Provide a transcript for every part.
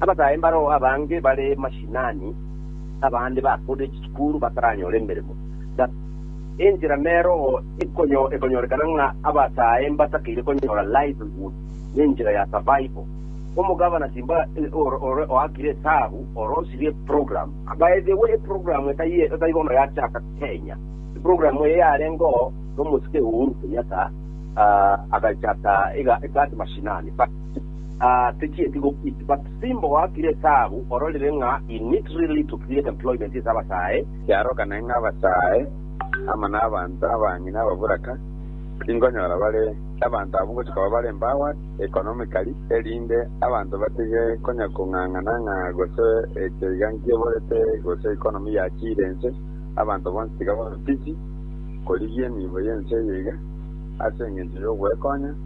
Abasae mbareo abange bare mashinani, na abande bakoorire chisukuru bataranyora emeremo. Gaki, enchera neroo ekonyorekana ng'a abasae mbatakeire konyora livelihood nenchera ya survival. Omogabana timba ore oakire esabu orosirie program. By the way, eprogram etari bono yachaka Kenya. Eprogram eye yarengeo nomosike Uhuru Kenyatta agachaka iga at mashinani. Aa techieti gokwiiti but simba oakire esabu ororire ng'a he need really to create employment ase abasae. Kiarogane ng'a abasae amo nabanto abang'ina ababuraka tingonyora bare abanto abwo ngochia koba bare empowered economically erinde abanto batige konya kong'ang'ana ng'a gose echo iga nkiborete gose economy yachiire ense abanto bonsi tiga babe busy korigia emiibo y'ense eye iga ase engencho y'ogwekonya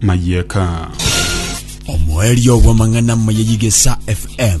mayeka. Omoerio bw'amang'ana amaya y'Igesa FM.